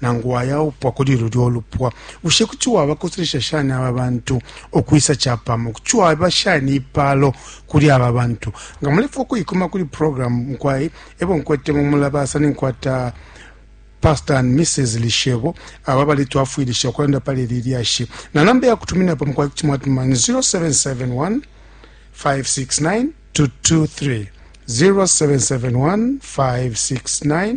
nangu wayaupwa kuli lulya ulupwa bushe kuti wabakoselesha shani aba bantu ukwisa capamo kuti waba shani ipalo kuli aba bantu nga mulefa ukuikuma kuli programu mukwai ebo nkwete mumulabasa ninkwata pastor and mrs lishebo aba balitwafwilisha ukulanda pali ili lyashi na namba yakutuminapo mukwai kuti mwatuma ni 0771 569 223 0771 569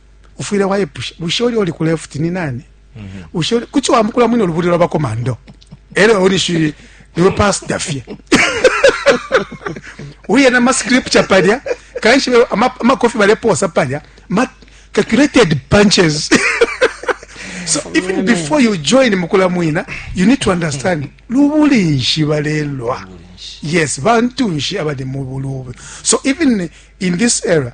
ufwile waipusha bushe uli oli ku left ni nani mm -hmm. bushe kuchi wambukula mwino lubuli lwa bakomando elo uli shi niwe pastor fye uye na ma scripture palya kanshi ama, ama coffee baleposa palya ma calculated punches so even before you join mukula mwina you need to understand lubuli nshi balelwa yes bantu nshi abali mu bulube so even in this era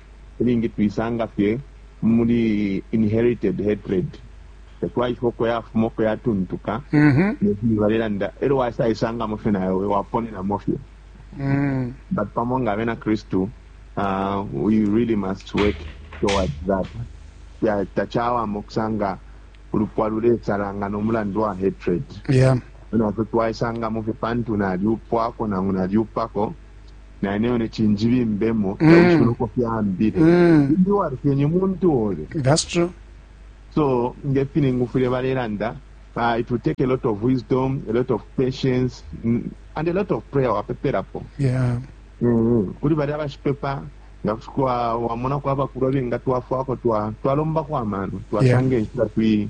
ilingi tuisanga fye muli inherited hatred tatwaishiba uko yafuma uko yatuntuka mm-hmm. nefyo balelanda elyo wasaisangamo fye nayo waponenamo fye mm. but pamo nga abena kristu uh, we really must work towards that tachawama okusanga ulupwa luletsalanga nomulandu wa hatred yeah. naffe twaisanga mu fipantu nalyupwako nangu nalyupako naneo neci njibimbemo Mm. nawishibe uko fyambile Mm. ndi walufyenye muntu obe That's true. so ngefine ngufwile balelanda uh, it will take a lot of wisdom a lot of patience mm, and a lot of prayer wapepelapo Yeah. Mm-hmm. kuli bali abashipepa nga kushikwa wamona kwaba kuba benga twafwako twa twalomba kwa mano twasanga enshita twi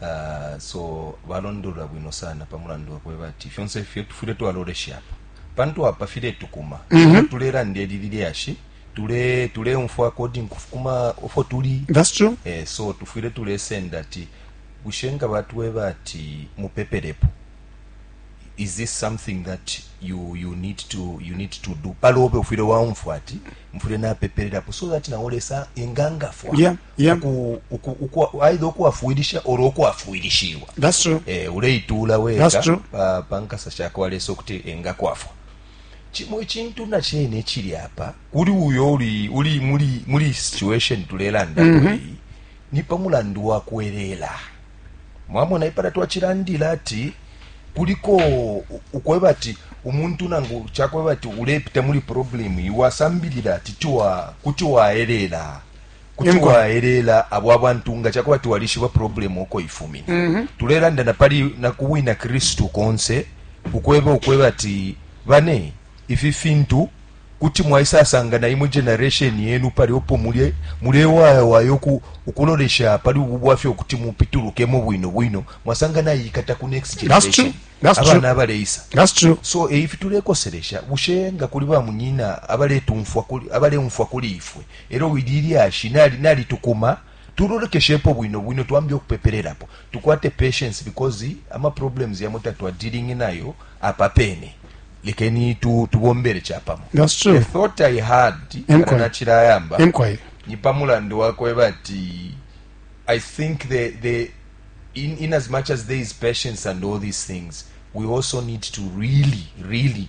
Uh, so balondolola bwino sana pa mulandu wakweba ati fyonse ifyo tufwile twaloleshapo pantu apa filetukuma mm -hmm. tulelanda eli lilyashi tule tuleumfwa according kufuma ofo tuli that's true eh, so tufwile tulesenda ati bushe nga batweba ati mupepelepo is this something that you you need to you need to do palobe ufwile waumfwa ati mfwile napepererapo so that naolesa engangafwa yeah. Yeah. uku, uku, uku, aidha ukuwafwilisha olo ukwafwilishiwa That's true. eh, uleituula weka That's true. pa, pa nkasa shakwa lesa ukuti engakwafwa cimo icintu na cene cili apa kuli uyo uli, uli muli, muli situation tulelanda mm -hmm. ni pa mulandu wa kwelela mwamona ipala twacilandila ati kuliko u- ukweba ati umuntu nangu cakweba ati ulepita muli problem iwasambilila ati tiwa kuti waelela kuti Inko. waeleela abo abantu nga cakuba ati walishiba problem uko ifumine Mhm. tulelanda na pali na ku bwina kristu konse ukweba ukweba ati bane ifi fintu kuti mwaisasanga na imwe generation yenu pali opo mulye mulewayawaya uku- ukulolesha pali ubu bwafya ukuti mupitulukemo bwino bwino mwasanga nayikata ku next That's true. generation That's true. abana abaleisa That's true. so eifi tulekoselesha bushe nga kuli bamunyina abaletumfwa kuli abaleumfwa kuli ifwe Elyo wili ilyashi nali nalitukuma tulolekeshepo bwino bwino twambe ukupepelelapo tukwate patience because ama problems yamo tatwa dealing nayo apa pene lekeni tu tubombele chapamo that's true the thought i had kana nachila yamba ni pamulandu wakwe bati i think the the in in as much as there is patience and all these things we also need to really really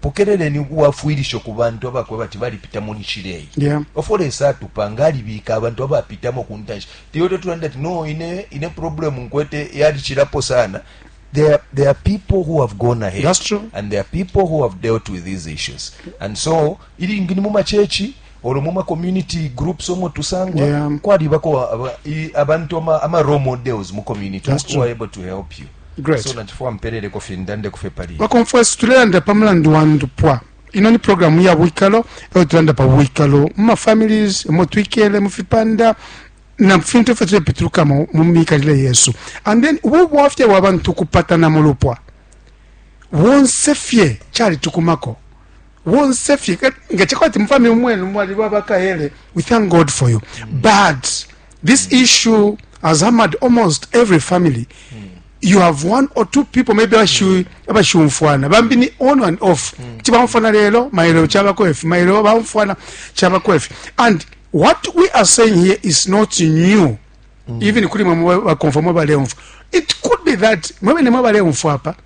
Pokeleleni ubwafwilisho ku bantu abakwebati balipita mu nshila iyi. Yeah. Ofwo Lesa atupanga alibika abantu abapitamo kuntanshi. Iwe totulanda ati, no, ine, ine problem nkwete yali chilapo sana. There are, there are people who have gone ahead. That's true. And there are people who have dealt with these issues. And so, Ilingi ni mu macurchi olo mu ma community groups omo tusangwa yeah. kwalibako abantu ama, ama role models mu community who are able to help you Great. so nachifuwa mpeleleko fye ndande kufe pali bakonfwesi tulelanda pa mulandu wa ndupwa ino ni programu ya bwikalo eyo tulanda pa bwikalo mu mafamilies omo twikele mu fipanda na fintu ifyo tulepitulukamo mu mikalile yesu and then ubu bwafya bwa bantu kupatana mu lupwa bonse fye cali tukumako bonse fye nga chakwati mfami umwenu mwali baba kaele we thank god for you mm. but this mm. issue has hammered almost every family mm. you have one or two people maybe mm. abashumfwana bambi ni on and off mm. kuti bamfwana lelo mailo chabako efi mailo bamfwana chabako efi and what we are saying here is not new mm. even kuli mwe bakonfwa mwe baleumfwa it could be that mwe bene mwe baleumfwa apa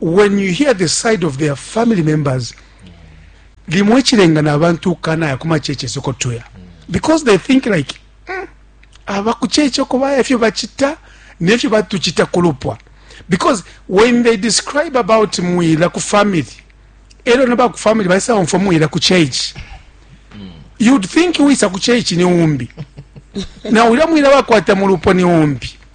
when you hear the side of their family members limwe chilenga na abantu kana ya kuma cheche soko tuya because they think like mm, aba kucheche ko baya fyo bachita ne fyo batuchita kulupwa because when they describe about muila ku family ero na ba ku family ba sound for muila ku church mm. you'd think we sa ku church ni umbi na ulya muila ba kwata mulupo ni umbi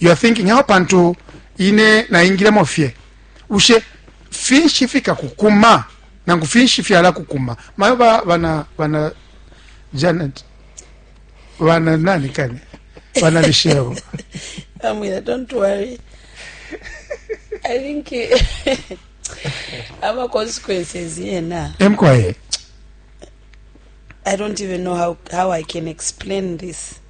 you are thinking aho pantu ine naingilemo fye ushe finshi fikakukuma nangu finshi fyalakukuma mayo ba, bana, bana janet bana nani kani bana lisheo amwira don't worry i think ama consequences yena emkwaye i don't even know how, how i can explain this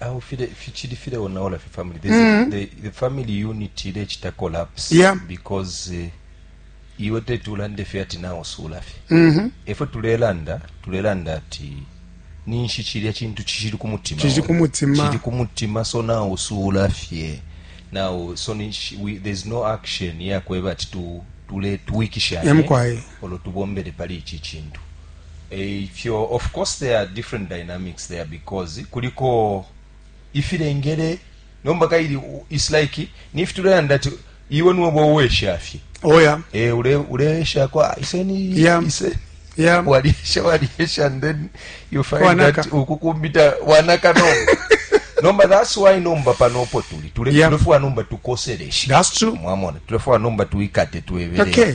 aho file fichili file onaola fi family there's mm -hmm. a, mm-hmm. the, the family unit ile chita collapse yeah. because uh, iwe tete ulande fye ati nawe osuula fye mm -hmm. efwe tulelanda tulelanda ati ninshi chilya chintu chishili ku mutima chishili ku mutima chishili ku mutima so nawe osuula fye nawe so ninshi we, there's no action yakweba ati tu tuletwikisha olo tubombele pali ichi chintu Eikyo of course there are different dynamics there because kuliko ifilengele nomba kaili it's like nifi tulelanda ati iwe niwebo uweshafye oya oh, e, eh, ule uleesha kwa iseni yeah. iseni yeah. waliesha waliesha and then you find wanaka. that ukukumbita wanaka no nomba that's why nomba panopo tuli tulefua yeah. nomba tukoseleshe that's true mwamona tulefua nomba tuikate tuebele okay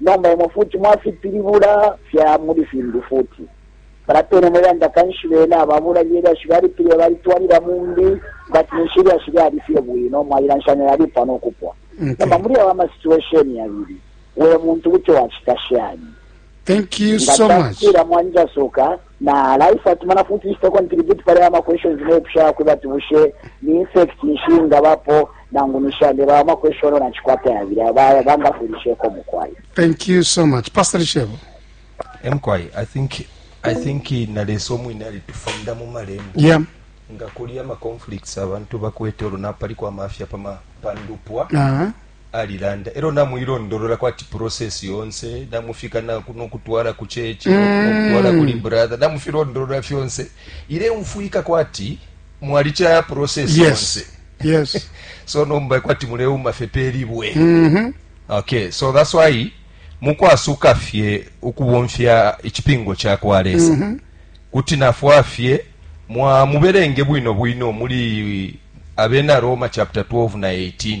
Nomba imwe futi mwafipilibula fya muli fimbi futi. Palya pene mwe landa, kanshi bena aba bulali elyashi balipilibula balitwalila mumbi, but ninshi ilyashi lyali fye bwino, mwalilanshanya yalipwa no kupwa. Okay. Nomba muli awa ma situation yabili, we muntu kuti wacita shani? Thank you so much. Nga takwila mwanjasuka, Na life ati mana futi ishita contribute pale ama questions ne pusha yakwe bati bushe ni insect nshi ngabapo nangu nishande ba ama question na chikwata ya bila ba banga fulishe ko mukwai Thank you so much Pastor Shebo Emkwai I think I think na leso mwine ali tufunda mu malembo Yeah nga kuli ama conflicts abantu bakwete olunapali kwa mafia pama pandupwa uh -huh. alilanda elo namuilondolola kwati process yonse namufika nokutwala ku chechi mm. nokutwala kuli brother namufilondolola fyonse ile mfwika kwati mwali chaya process yes. yonse yes so nomba kwati muleuma fepeli bwe mm -hmm. okay so that's why mukwasuka fye ukubomfya ichipingo cha kwa lesa mm -hmm. kuti nafwa fye mwa muberenge bwino bwino muli abena roma chapter 12 na 18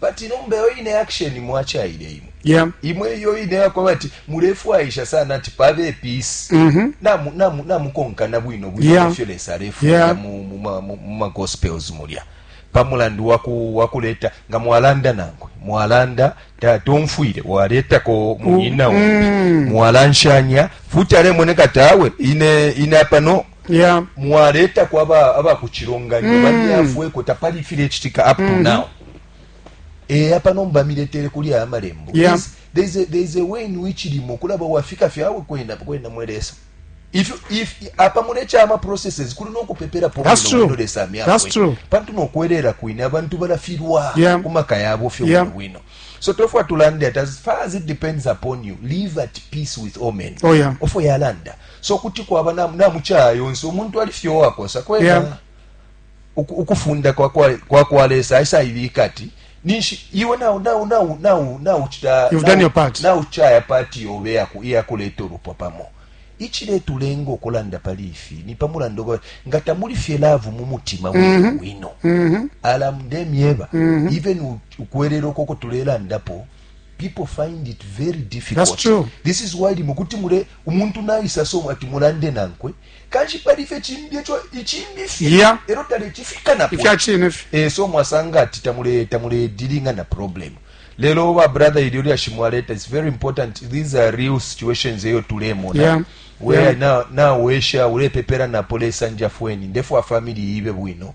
Bati nomba iyo ine action mwachaile imwe. Yeah. Imwe iyo ine yako bati mulefwaisha sana ati pabe peace. Mm -hmm. Na mu, na mu, na mukonka na bwino bwino yeah. fyo lesa refu yeah. mu, mu, mu, mu, mu gospels mulya. Pamulandu waku wakuleta nga mwalanda nangwe. Mwalanda tatomfwire waleta ko munyina mm. mwalanshanya futi ale moneka tawe ine ine apano yeah. mwaletako aba, aba ku cilonganyo mm. bamyafweko tapali ifilecitika up to mm. now eya pano mbamiletere kuli aya malembo yeah. there, is a, there is a way in which limo kulaba wafika fyawe kwenda kwenda mwelesa if if apa mulecha ama processes kuli nokupepera po that's true no lesa myakwe that's true pantu nokwerera kwine abantu balafirwa yeah. kumaka yabo fyo yeah. wino so tofwa tulande as far as it depends upon you live at peace with all men oh yeah ofo yalanda so kuti kwaba na na mucaya yonse umuntu ali fye wakosa kwena yeah. uku, ukufunda kwa kwa, kwa, kwa lesa aisa ibika ati ninshi iwe nawu nawu nawu nawu nawu chita you've done your part nawu chaya part yobe yaku iyakuleta olupwa pamo ichiletulenga okulanda pali ifi ni pamulando nga tamuli fye laavu mu mutima mm -hmm. wino mm -hmm. alamde myeba mm -hmm. even ukwerera okoko tulelandapo People find it very difficult. That's true. This is why limo kuti mule umuntu naisa so ati mulande nankwe kanshi pali fye chimbi echo ichimbi fye yeah. ero tale chifika na ifya chine fye eh so mwasanga ati tamule tamule dealing na problem lelo wa brother ilyo lya shimwaleta it's very important these are real situations eyo tulemona yeah. where yeah. na na wesha ulepepera na polesa njafweni ndefu wa family ibe bwino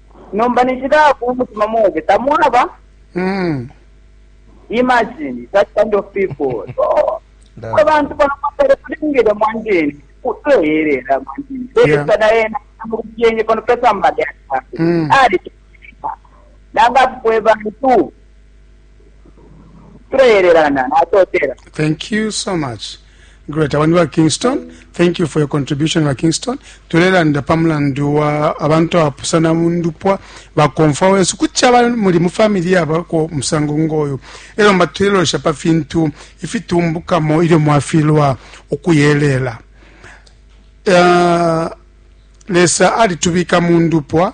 nomba ninshi dafu umutima mobe tamwaba Mm. imagine that kind of people so Dafu. abantu banapapele kulingile mwanjeni kutoyelela mwanjeni Yeah. sana yena amukyenye kono pesa mbali Mm. ali nanga kwe bantu Tuleelelana, natotela. Thank you so much. Great. Abantu ba Kingston, thank you for your contribution ba Kingston. Tulelanda pa mulandu wa abantu abapusana mu ndupwa bakomfa wesu kuti aba muli mu family yabako musango ngoyo. Elo mba tulelosha pa fintu ifitumbukamo ilyo mwafilwa ukuyelela. Uh, lesa alitubika mu ndupwa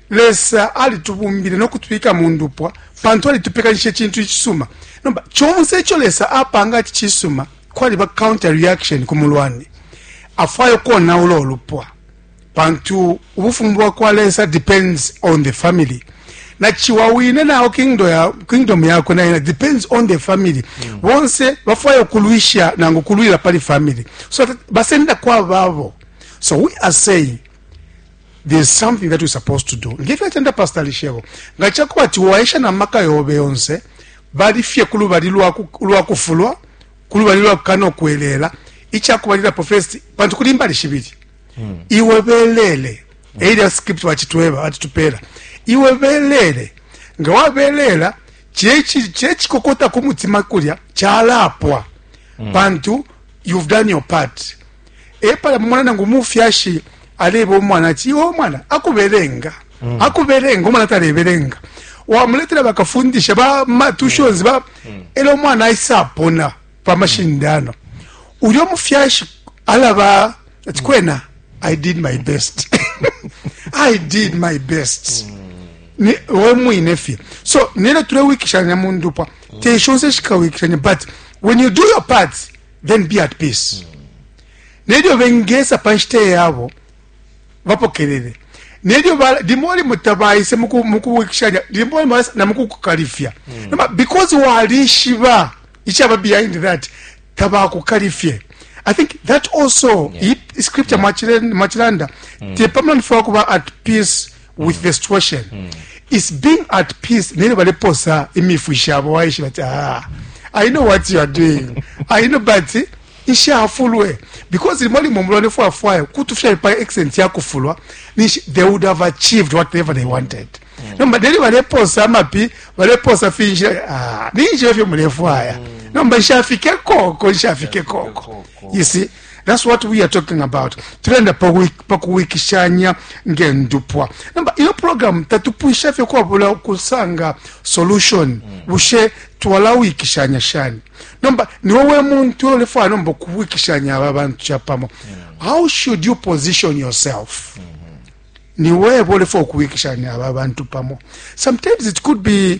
Lesa alitubumbile no kutubika mu ndupwa pantu alitupekanisha icintu icisuma. Nomba conse ico Lesa apanga ati cisuma, kwaliba counter reaction ku mulwani. Afwaya ukonaula ulupwa pantu ubufumu bwa kwa Lesa depends on the family na chiwa wine nao kingdom ya kingdom yakwe naye depends on the family mm. bonse bafwaya ukulwisha nangu kulwila pali family so basenda kwa babo so we are saying there's something that you're supposed to do ngefyo atenda pastor lishebo nga chakuba ati waisha na maka yobe yonse bali fye kulubali lwa lwa kufulwa kulubali lwa kano kwelela ichakubalira professed pantu kulimba lishibiri hmm. iwe belele hmm. area script wa chitweba ati tupela iwe belele nga wabelela chechi chechi kokota kumutima kulya chalapwa hmm. pantu you've done your part epala mumona nangu umufyashi aleba umwana ati iwe umwana akubelenga mm. akubelenga umwana talebelenga wamuletera bakafundisha ba matushons ba mm. era omwana ayisa apona pamashindano ulyo mufyashi alaba ati kwena i did my best i did my best mm. wemwine fye so nero tulewikishanya mundupwa mm. teshonse shikawikishanya but when you do your part then be at peace mm. nelyo bengesa pa nshita yabo bapokelele nelyo limo limo tabayise mukuwikishanya limo limo na mukukukalifya mm. noma because walishiba ichaba behind that tabakukalifye i think that also yeah. scripture yeah. machilanda mm. tepamlanifuna kuba at peace with the situation mm. is being at peace nene baleposa imifwi shabo waishi bati ah, i know what you are doing i know but ishafulwe because limo limo mulwane fwafwayo kutufya pa excellent yakufulwa nishi they would have achieved whatever they wanted mm. nomba deli baleposa amapi baleposa finshi ah, ninshi efyo mulefwaya mm. nomba nshafike koko nshafike koko you see That's what we are talking about. Tulenda pa kuwikishanya ngendupwa. Namba iyo program tatupwisha fye kwabula ukusanga solution. Mm. Bushe twalawikishanya shani? Namba ni wewe muntu olefwa nomba kuwikishanya aba bantu chapamo. Mm. How should you position yourself? Mm -hmm. Ni wewe olefwa kuwikishanya aba bantu pamo. Sometimes it could be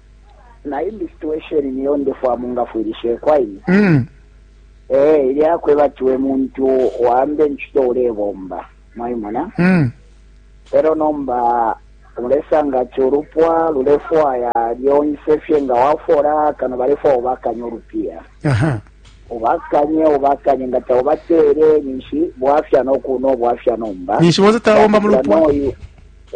na imbi situation niyo ndefwa mungafwilisheko aini mm. eh ilya kwebatiwe muntu wambe nchito ulebomba mwaimona mm. pero nomba ulesanga ati olupwa lulefwaya lyonse fye nga wafola kano balefwaya obakanye olupiya obakanye obakanye nga taubateere ninshi bwafya nokuno obwafya nomba ninshi bonse tabomba mu lupwa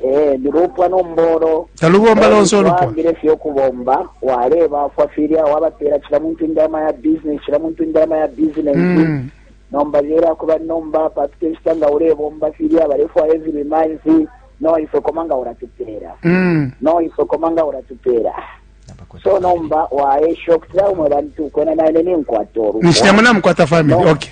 Eh, lupwa nombolo talubomba lonse ulupwaambile fye ukubomba walebafwa filya wabapeela cila muntu indalama ya business cila muntu indalama ya business mm. nomba lyela kuba nomba papita inshita nga ulebomba filya balefwaya every month no ifwe koma nga ulatupeela mm. no ifwe koma nga ulatupeela so nomba waesha okutila umwe bantu kwena naine ninkwata olupwa nishinamunamukwata family no. okay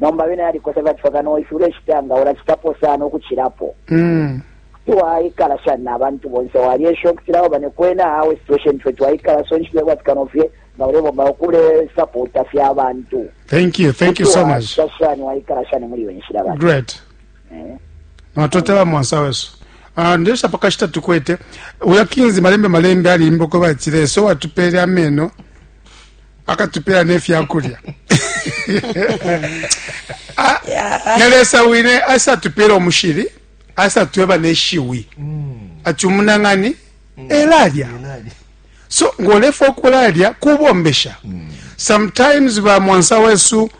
nomba bena yalikosa bacifa kano ifi ulecitangaula cikapo sana ukucilapo mm. kuti waikala shani na bantu bonse walyesha ukutilawo bane kwena awe situation fwe twaikala so nshile kwati kano fye nga ulebomba ukule sapota fye abantu thank you thank you so much shani waikala shani muli wenshila bane great eh. natotela mwansa wesu ah, ndesha pakashita tukwete uya kinzi malembe malembe alimba uko batile so watupele ameno akatupela ne fya kulya ah, na lesa wine asatupela umushili asatweba neshiwi mm. ati umunang'ani mm. elalya so ng'olefa okulalya kubombesha mm. sometimes bamwansa wesu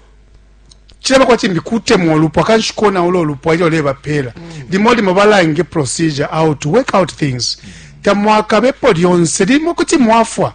kiraba kwati mbikutemwa olupwa kanshi kona ulo olupwa ilyo lebapeela mm. limo limo balange procedure out work out things mm. tamwakabepo lyonse limo kuti mwafwa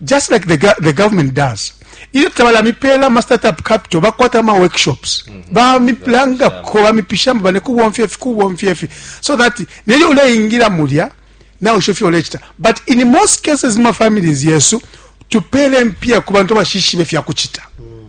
just like the, the government does ilyo tabalamipela ama startup capital bakwata ama workshops mm -hmm. bamipilanga ko bamipishamo bane kubomfya ifi kubomfya ifi so that nelyo uleingira mulya nawe usho fyo ulechita but in most cases ma families yesu tupele mpia ku bantu bashishibe fya kuchita mm.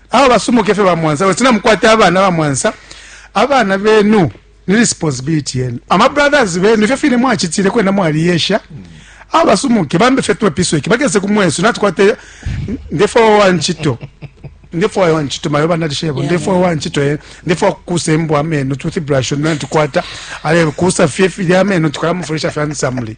Awe basomoke fye ba Mwansa basi na mukwata abana ba Mwansa abana benu ni responsibility yenu ama brothers benu fye fine mwachitile kwenda mwali yesha awe basomoke bambe fye tuwe piso iki bageze ku mwesu natukwate ndefo wa nchito ndefo wa nchito mayo bana dishebo ndefo wa nchito ye ndefo kuse mbo ameno toothbrush na tukwata ale kusa fye fye ameno tukala mufurisha fye ansamli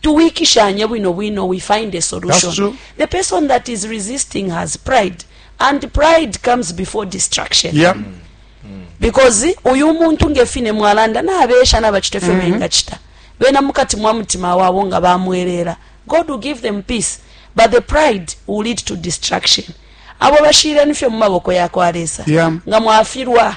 Tuwikishanye bwino bwino, we find a solution. The person that is resisting has pride and pride comes before destruction. Yeah. Mm. Mm. Because uyu muntu ngefine mwalanda na abesha na bachite fyo mm -hmm. bengachita. Bena mukati mwa mutima wabo nga bamwelela. God will give them peace, but the pride will lead to destruction. Abo bashire nifyo mu maboko ya kwa Lesa. Yeah. Nga mwafirwa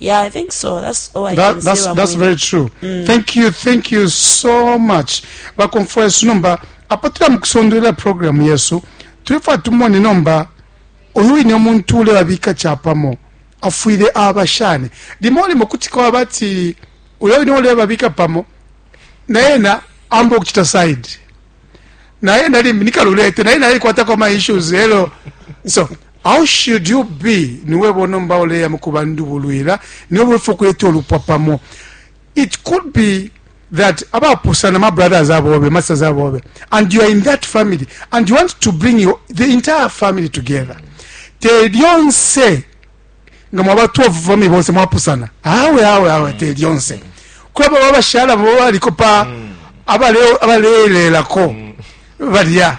Yeah, I think so. That's all I that, can that's, say. That's very true. Mm. Thank you, thank you so much. Bakonfwa yesu nomba apatira mukusondera program yesu tulifa tumone nomba uyu ine omuntu ule babika chapamo afwire abashane limo limo kuti kwa bati uyo ine ule babika pamo naena ambo kuchita side naena limbi nikalulete naena alikwata kwa ma issues hello so How should you be? Niwebo nomba uleya mukuba ndubulwila, niwebo wefo ukuleta ulupwa pamo. It could be that abapusana ma brothers abobe, masters abobe, and you are in that family, and you want to bring your, the entire family together. Te lyonse, nga mwaba 12 family bonse mwapusana. Awe, awe, awe, te lyonse. Kwa baba bashala, baba liko pa, mm. abale, abale, lelako, mm. badia.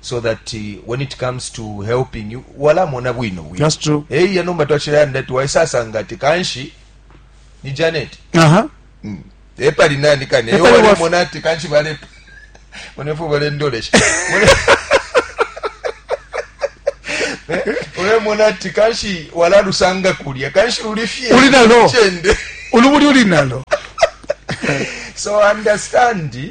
so that uh, when it comes to helping you walamona bwino bwino that's true hey ya nomba twachira yanda tu waisa sanga ti kanshi ni janet aha uh -huh. mm. e pali nani kane e wale waf... mona ti kanshi bale mone fo bale ndolesh mone eh, ule mona ti kanshi wala lusanga kulya kanshi uli fie uli nalo chende uli uli nalo so understand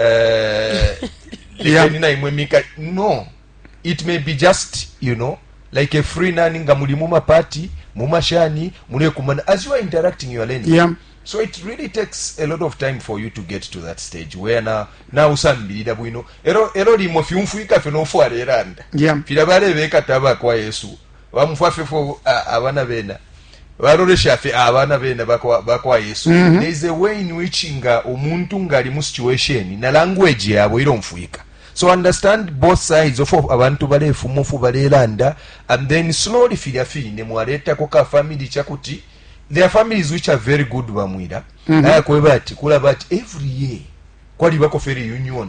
eh, lekeni naimwe mika no it may be just you know like a free nani nga muli mu mapati mu mashani mulekumana as you are interacting you are learning yeah. so it really takes a lot of time for you to get to that stage where na nausambilila bwino ero ero limo fyumfwika fye nofwala eranda yeah. fila balebekata abakwa yesu bamfwa fye fo abana bena balolesha fye abana bena ba kwa yesu mm -hmm. there is a way in which nga umuntu nga ali mu situation na language yabo ilomfwika so understand both sides of abantu balefuma ofu balelanda and then slowly filya fine mwaletako ka family chakuti there are families which are very good bamwira mm -hmm. ayakweba ati kulaba ati every year kwalibako fe reunion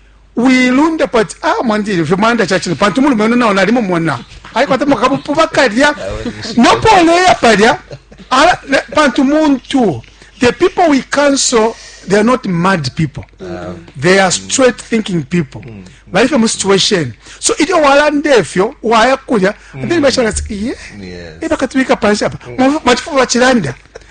wilundapo ati ah, mwandile fye mwanda cacine pantu mulume ono nao nalimumona alikwata makabupu bakalya nopo oleya palya pantu muntu the people we cancel they are not mad people uh, they are straight thinking people mm. bali fye mu situation so ilyo walanda efyo waya kulya mm. then bashaka yes. ebakatubika panshi apa mm. mwachifuba chilanda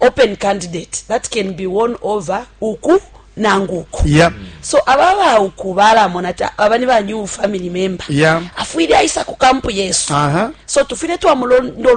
open candidate that can be won over uku nangu uku yeah. so aba ba uku balamona ta aba ni ba new family member yeah. afwile aisa ku kampu yesu uh -huh. so tufile twamulondolwela